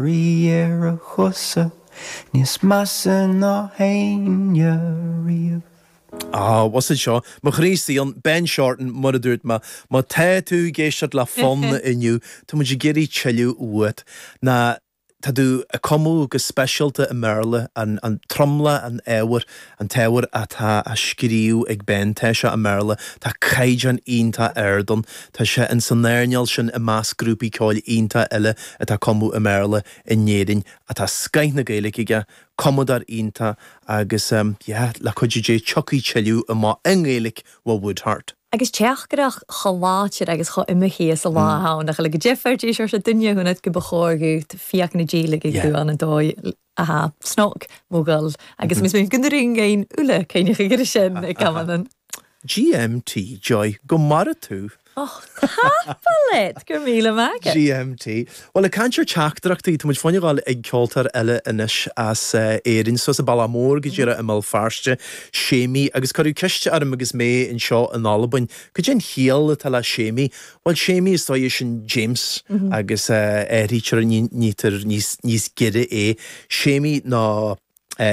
rí ar a chosa níos measa ná éinne riamh. Ah, was it seo má ghríosaíonn Ben Shorten mar a dúirt mé, má tá tú ag éisteacht le fonn inniu, tá muid ag iarraidh tuilleadh uait. Nó tá tú ag cumadh go speisialta i mBéarla, an tromlach, an ábhair, An t-ábhar atá á scríobh ag Ben tá sé i mBéarla, tá caighdeán iontach ard ann, tá sé in san earnáil sin i measc grúpaí ceoil iontach eile atá ag cumadh i mBéarla in Éirinn ach tá scoith na Gaeilge aige, cumadóir iontach agus ehm yeah le cuidiú Dé tiocfaidh tuilleadh amach i nGaeilge ó Woodheart. Agus teachtaireacht chomh láidir agus chomh imithe is a lá a tháinig le go dteipfear dís ar sa duine a dhúnadh go ba chóir dhúirt fiach na Gaeilge go raibh ann an dóigh Aha, Snog, Mogul, agus Ms Mhic na Ring aon Uladh, cé nach gcuirfidh sé in a gcamán an. GMT, Joy, go maire tú! Och, Cappellet! Go raibh míle maith agat! GMT, Bhuel, ag caint ar teachtaireachtaí, tá muid fá choinne a ghabháil ag ceoltóir eile anois as Éirinn, suas an bealach mór go díreach i mBéal Feirste, Séimí, agus cuireadh ceist orm agus mé anseo in Albain. Cad é an chiall atá le Séimí? Bhuel, Séimí is dóigh sin James agus áirítear níthear níos giorra é Séimí ná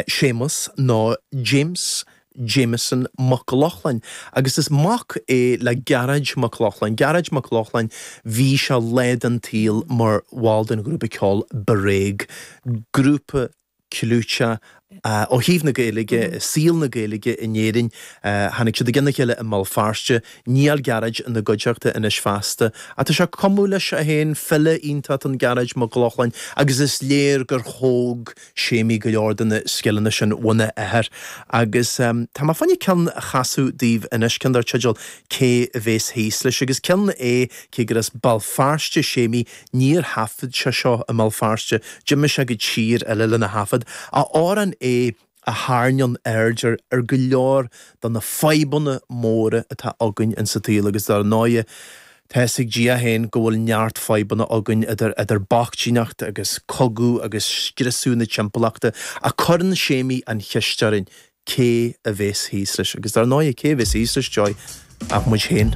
Séamas nó James Jameson Mac Lochlainn agus is mac é le Gearóid Mac Lochlainn Gearóid Mac Lochlainn Bhí sé lá den tsaol mar bhall den ghrúpa ceoil Bréag, grúpa clúiteach ó thaobh na Gaeilge, saol na Gaeilge in Éirinn. Tháinig siad i gcionn a chéile i mBéal Feirste, níl Gearóid ina gcuideachta anois feasta, ach tá sé ag cumadh leis féin, file iontach an Gearóid Mac Lochlainn, agus is léir gur thóg Séimí go leor de na scileanna sin óna athair. Agus tá mé fá choinne ceann a chasadh daoibh anois, ceann dar teideal Cé a bhéas thíos leis? agus ceann é, cé gur as Béal Feirste Séimí, Níor thaifead sé seo i mBéal Feirste, d'imigh sé go tír eile lena thaifead, amhrán é a thairneann aird ar go leor de na fadhbanna móra atá againn in sa tsaol agus dar ndóighe tá fhios ag Dia féin go bhfuil neart fadhbanna againn idir bochtaineacht agus cogadh agus scriosadh na timpeallachta ach cuireann Séimí an cheist orainn cé a bhéas thíos leis agus dar ndóighe cé a bhéas thíos leis Joy ach muid féin.